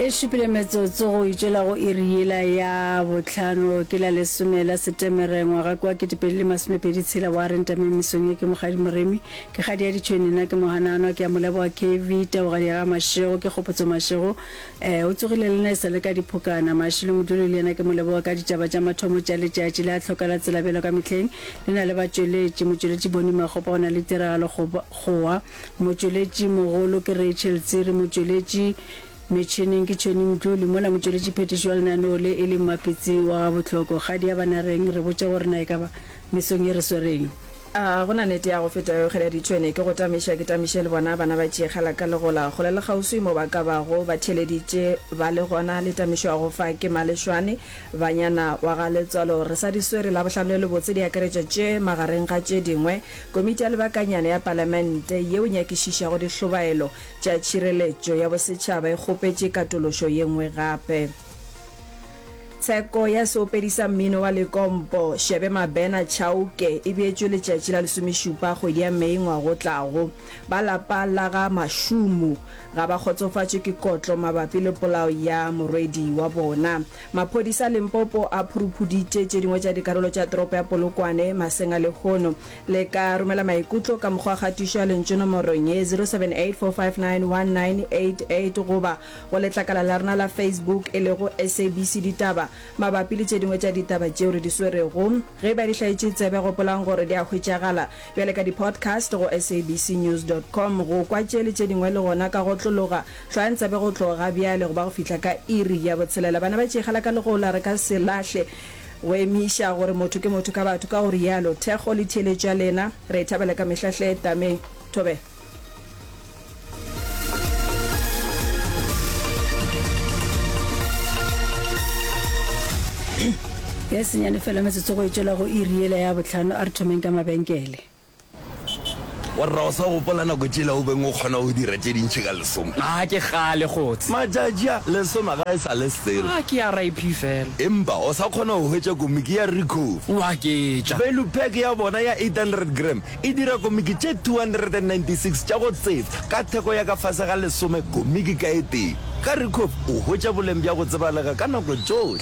e šupile metsotso go itšela go iri yela ya botlhano ke la lesome la setemere ngwaga kwa ketepedi le masomepedi tshela wa re ntame mesong ye ke mogadi moremi ke gadi ya ditšhweni nna ke moganano ke ya moleboa kv taogadi ya ga mašego ke kgopotso mašego um eh, o tsogile le nna e sa le ka diphokana mašilo moduli le yena ke moleboa ka ditšaba tša mathomo tša letšatši le a tlhoka la tselabelo ka mehleng le na le batšweletši motšweletši boni magopa o na le tiragalo gowa Motšweletši mogolo ke Rachel Tsiri, motšweletši metšhineng ke Tšhoni Mdluli, mola motšweletši phethiši wa lenaneo le e le Mmapitsi wa ga Botloko. Kgadi ya Banareng, re botše gore na e ka ba mesong ye re swereng? A go na nete ya go feta yo kgeda ditšhwene ke go tamiša ke tamiše le bona bana ba tšeekgala ka legola kgole le kgauswi mo ba ka bago ba theeleditše ba le gona le tamišwago fa ke Malešwane banyana wa ga Letswalo re sa di swere Labohlano le lebotse di akaretša tše magareng ga tše dingwe Komiti ya Lebakanyana ya Palamente yeo e nyakišišago dihlobaelo tša tšhireletšo ya bosetšhaba e kgopetše katološo ye nngwe gape. Tsheko ya seopedi sa mmino wa lekompo, Shebe Mabena Chauke e beetšwe letšatši la lesomešupa kgwedi ya Mei ngwaga o tlago. Ba lapa la ga Mashumu ga ba kgotsofatšwe ke kotlo mabapi le polao ya morwedi wa bona. Maphodisa a Limpopo a phuruphuditše tše dingwe tša dikarolo tša toropo ya Polokwane maseng a lehono. Le ka romela maikutlo ka mokgwa wa kgatišo ya lentšu nomorong ye, 0784591988 goba go letlakala la rena la Facebook e lego SABC Ditaba mabapi le tše dingwe tša ditaba tšeo re di swerego. Ge e ba di hlaetše tsebe, gopolang gore di a hwetšagala bjale ka di-podcast go sabcnews dot com. Go kwa tše le tše dingwe le gona ka go otlologa. Hlwang tsabe go tloga bjale go ba go fihla ka iri ya botshelela. Bana ba tšeegela ka legola, re ka se lahle go emiša gore motho ke motho ka batho, ka go rialo. Thekgo le theeletšo ya lena re e thabela ka mehla hle. Tame. Thobela. E senyane fela metsotso go e tšwela go iri yela ya bohlano. A re thomeng ka mabenkele. Warra, o sa gopola nako tšela o beng o kgona go dira tše dintši ka lesome? Ga ke kgale, kgotse. Matšatši a, lesome ga e sa le selo. Ga ke a RIP fela. Empa o sa kgona go hwetša komiki ya Ricoh? Wa ke tša. Value pack ya bona ya 800 gram e dira komiki tše 296 tša go tseba ka theko ya ka fase ga lesome komiki ka e tee. Ka Ricoh o hwetša boleng bja go tsebalega ka nako tšohle.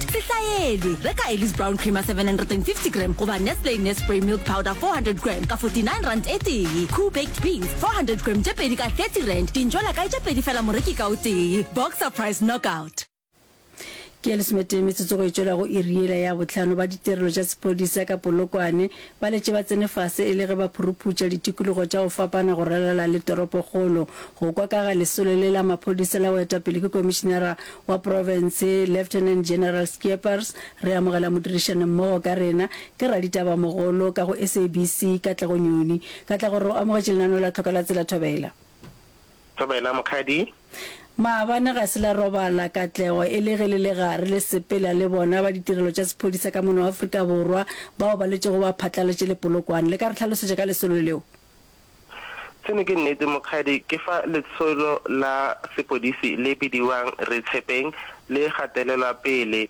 Sehlaeli, Reka Elly's Brown Creamer 750 gram goba Nestle Nespray Milk Powder 400 gram ka 49 rand e tee. Koo Baked Beans 400 gram tše pedi ka 30 rand. Dintšo la kae tše pedi fela moreki ka o tee. Boxer Price Knockout. Ke ya lesometee metsotso go e tšwela go iri yela ya bohlano ba ditirelo tša sephodisa ka Polokwane Ba letše ba tsene fase e le ge ba phuruputša ditikologo tša go fapana go ralala le toropokgolo. Go kwa ka ga lesolo le la maphodisa la boetapele ke komišinara wa profense Lieutenant General Schiepers, re amogela modirišanimmogo ka rena ke raditabamogolo ka go SABC Katlego Nyoni. Katlego, re o amogetše lenaneo la Tlhoka la Tsela Thobela. Dumela, Mokgadi. Maabane ga se la robala, Katlego, e le ge le le gare le sepela le bona ba ditirelo tša sephodisa ka mona wa Afrika Borwa bao ba letšego ba phatlaletše lepolokwane. Le ka re hlalosetša ka lesolo leo? Seno ke nnete, Mokgadi. Ke fa letsholo la sepodisi le bidiwang Re Tshepeng le gatelelwa pele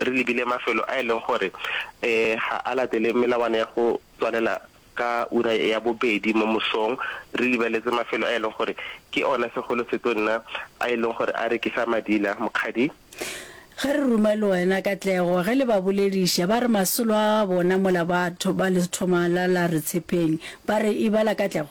Re lebile mafelo a e leng gore ga a latele melawana ya go tswalela ka ura ya bobedi mo mosong. Re lebeletse mafelo a e leng gore ke ona segolo setonna a e leng gore a rekisa madila, Mokgadi. Ge re ruma le wena Katlego, ge le ba bolediša, ba re masolo a bona mola batho ba lethoma la la re tshepeng. Ba re, Ebala Katlego.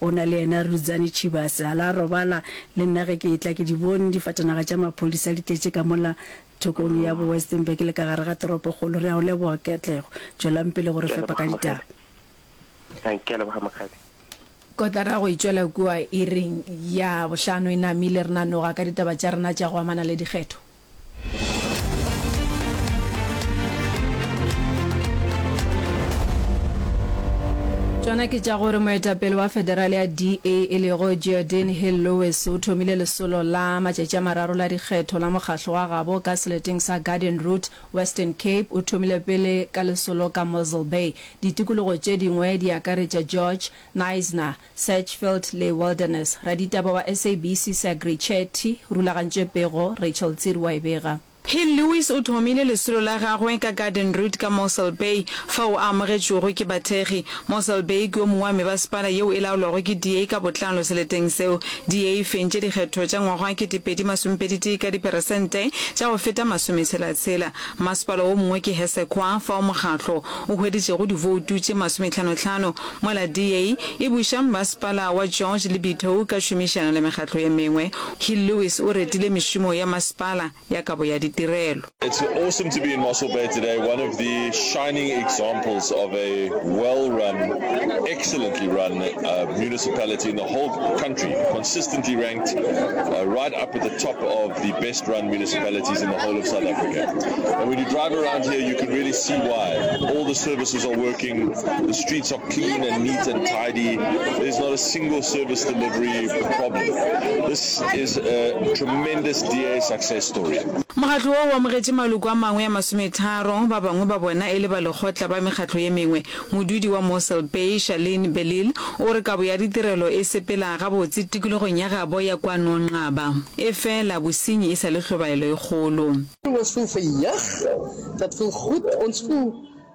Go na le yena Rudzani Chibase, a la robala le nna ge ke etla, ke di bone difatanaga tša maphodisa di tletše ka mola thokong ya bo Westenburg le ka gare ga toropokgolo. Re a go leboga Katlego. Tšwelang pele go re fepa ka ditaba. Ke a leboga Mokgadi. Kotara go e tšwela kua iring ya bohlano e namile, re nanoga ka ditaba tša rena tša go amana le dikgetho. Tšona ke tša gore moetapele wa federale ya DA e lego Geordin Hill-Lewis o thomile lesolo la matšatši a mararo la dikgetho la mokgahlo wa gabo ka seleteng sa Garden Route, Western Cape. O thomile pele ka lesolo ka Mossel Bay. Ditikologo tše dingwe di akaretša George, Knysna, Searchfield le Wilderness. Raditaba wa SABC Sagri Chetty o rulagantše pego, Rachel Tsiri wa e bega. Hill Lewis o thomile lesolo la gagwe ka Garden Route ka Mossel Bay fao a amogetšwego ke bathekgi. Mossel Bay ke o mongwe wa mebasepala yeo e laolwago ke DA ka botlalo seleteng seo. DA e fentše dikgetho tša ngwaga wa kete pedi masome pedi tee ka diperesente tša go feta masome tshela tshela. Mmasepala wo mongwe ke Hessequa fao mokgatlo o hweditšego divoutu tše masome tlhano tlhano. Mola DA e buša, Mmasepala wa George le Bithou ka tšhomišano le mekgatlo ye mengwe, Hill Lewis o retile mešomo ya masepala ya kabo ya ditirelo. It's awesome to be in Mossel Bay today, one of the shining examples of a well run, excellently run municipality in the whole country, consistently ranked right up at the top of the best run municipalities in the whole of South Africa. And when you drive around here you can really see why. All the services are working. Streets are clean and neat and tidy. There's not a single service delivery problem. This is a tremendous DA success story. Mokgatlo wo o amogetše maloko a mangwe a masometharo, ba bangwe ba bona e le ba lekgotla ba mekgatlo ye mengwe. Modudi wa Mossel Bay, Charlene Belil, o re kabo ya ditirelo e sepela gabotse tikologong ya gabo ya kwa Nongqaba. Efela, bosenyi e sa le hlobaelo e kgolo. Dit was veel verjaagd dat veel goed ons voel.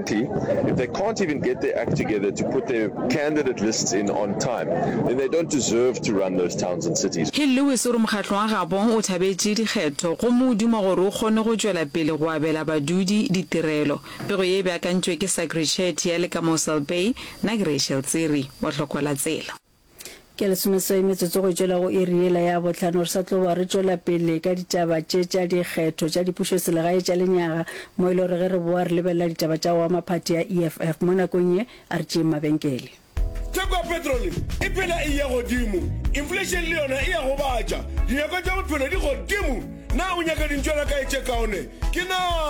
Frankly, if they can't even get their act together to put their candidate lists in on time, then they don't deserve to run those towns and cities. Hill Lewis o re mokgatlo wa Gabon o thabetše dikgetho gomme o duma gore o kgonne go tšwela pele go abela badudi ditirelo. Pego ye e beakantšwe ke Sagri Chetty ya le ka Mossel Bay, nna ke Rachel Tsiri wa Hlokola Tsela. Ke lesomeswai metsotso go tšwela go iri yela ya bohlano re sa tlo ba re tšwela pele ka ditaba tše tša dikgetho tša dipušoselegae tša lenyaga mo e le gore ge re boa re lebelela ditaba tša go ama phathi ya EFF mo nakong ye a re tšeeng mabenkele. Theko ya petrole e phela e eya godimo, inflation le yona e a gobatša, dinyakwa tša bophelo di godimo, na o nyaka dintšwana kae tše kaone? Ke na.